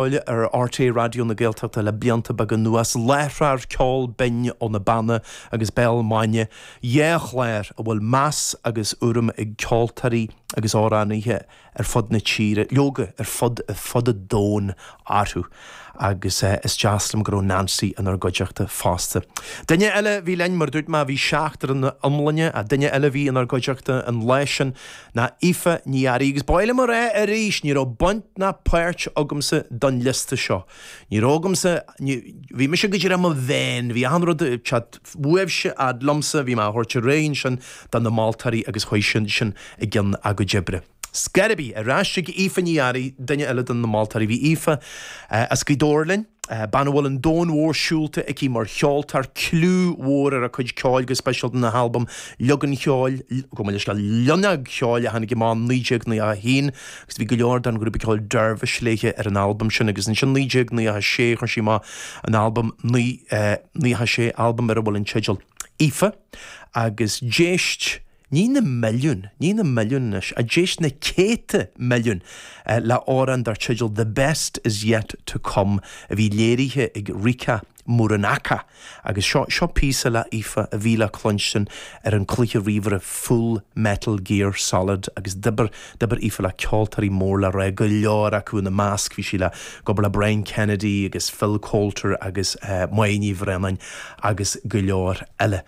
Uladh ar RTÉ Raidió na Gaeltachta le blianta beaga anuas, láithreoir Ceol Binn ó na Beanna agus Béal Maidine, dhá chlár a bhfuil meas agus urraim ag ceoltóirí agus amhránaithe ar fud na tíre, leoga, ar fud fad an domhain, orthu. Agus is deas liom go raibh Neansaí inár gcuideachta fosta. Duine eile a bhí linn, mar a dúirt mé, bhí seachtar ina iomláine, ach duine eile a bhí inár gcuideachta an lá sin, ná Aoife Ní Fhearraigh, agus ba mhaith liom a rá arís, ní raibh baint ná páirt agamsa don liosta seo. Ní raibh agamsa, ní, bhí mise go díreach i mo mheán, bhí achan rud ag teacht uaibhse a fhad liomsa, bhí mé á thabhairt ar aghaidh ansin do na moltóirí agus chuaigh siad ansin i gcionn a gcuid oibre. Ar scor ar bith, ar ais chuig Aoife Ní Fhearraigh, duine eile de na moltóirí. Bhí Aoife as Gaoth Dobhair linn. Bean a bhfuil an domhan mhór siúlta aici mar cheoltóir, cliú mhór ar a cuid ceoil go speisialta an albam Liog an Cheoil, gabh mo leithscéal, Loinneog Cheoil a tháinig amach 1991 agus bhí go leor den ghrúpa ceoil Dervish léithe ar an albam sin agus ansin 1996 chuir sí amach an albam 96 albam ar a bhfuil an teideal Aoife agus d'éist Ní na milliúin, ní na milliúin anois, ach d'éist na céadta milliún le amhrán dar teideal The Best Is Yet To Come a bhí léirithe ag Rika Muranaka agus seo, seo píosa le hAoife a bhí le cluinstin ar an cluiche ríomhaire Full Metal Gear Solid agus d'oibir, d'oibir Aoife le ceoltóirí mór le rá, go leor acu, ina measc bhí sí ag obair le Brian Kennedy agus Phil Coulter agus Moya Ní Bhraonáin agus go leor eile.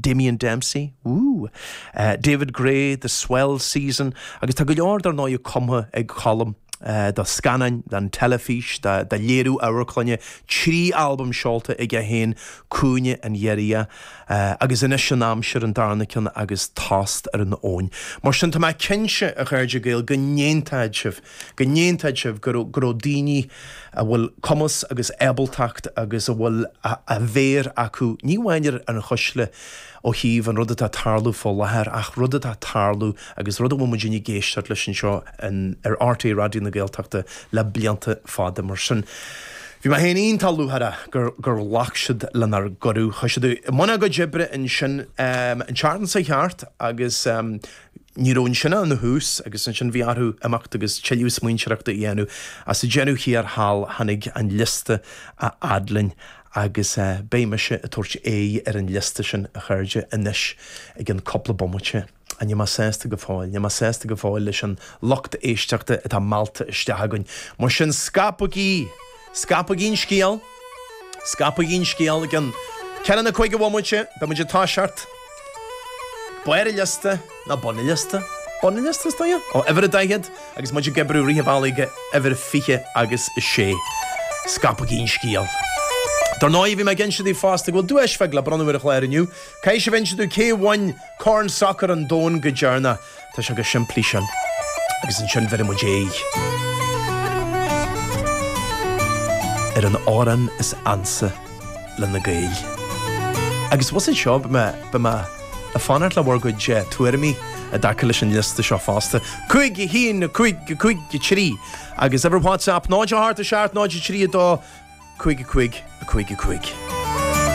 Damien Dempsey, woo! David Gray, The Swell Season, agus tá go leor dar ndóigh cumtha ag Colm do scannáin, don teilifís, do léiriú amharclainne, trí albam seolta aige féin, Cúinne an Ghiorria, Agus Anois an Aimsir an darna ceann agus Tost ar an Abhainn. Mar sin tá mé cinnte, a chairde Gael, go n-aontóidh sibh! go n-aontóidh sibh go raibh daoine a bhfuil cumas agus ábaltacht agus a bhfuil an mhéar acu ní amháin ar an chuisle ó thaobh an rud atá ag tarlú fá láthair ach rud atá ag tarlú agus rud a bhfuil muidinne ag éisteacht leis anseo ar RTÉ Raidió na Gaeltachta le blianta fada. Mar sin bhí mé féin iontach lúcháireach gur gur ghlac siad lenár gcuireadh. Chuaigh siad i mbun a gcuid oibre ansin an tseachtain seo thart agus Ní raibh ansin ach ina thús agus ansin bhí orthu imeacht agus tuilleadh smaointeoireachta a dhéanamh. Ach sa deireadh thiar thall tháinig an liosta a fhad linn agus beidh mise ag tabhairt aghaidh ar an liosta sin, a chairde, anois i gceann cúpla bomaite. Níl mé sásta go fóill. Níl mé sásta go fóill leis an lucht éisteachta atá meallta isteach againn. Mar sin, scaipigí! Scaipigí an scéal! Scaipigí an scéal! I gcionn ceathair nó cúig de bhomaití, beidh muid ag toiseacht. Barr an liosta, nó bun an liosta? Bun an liosta, is dóiche? Ó uimhir a daichead agus muid ag oibriú rith an bhealaigh go uimhir fiche agus a sé. Scaipigí an scéal! Dar ndóigh, bhí mé ag inse daoibh fosta go bhfuil duais bheag le bronnadh ar an chlár inniu. Caithfidh sibh a inse domh cé a bhain Corn Sacair an Domhain go deireanach. Tá sé chomh simplí sin. Agus ansin bhéarfaidh muid aghaidh ar an amhrán is ansa le na Gaeil. Agus was it seo, beidh mé ag fanacht le bhur gcuid tuairimí i dtaca leis an liosta seo fosta. Cúig, a haon, a cúig, a cúig, a trí. Agus uimhir WhatsApp, 08 7, 03, 2, 5, 5, 5, 5.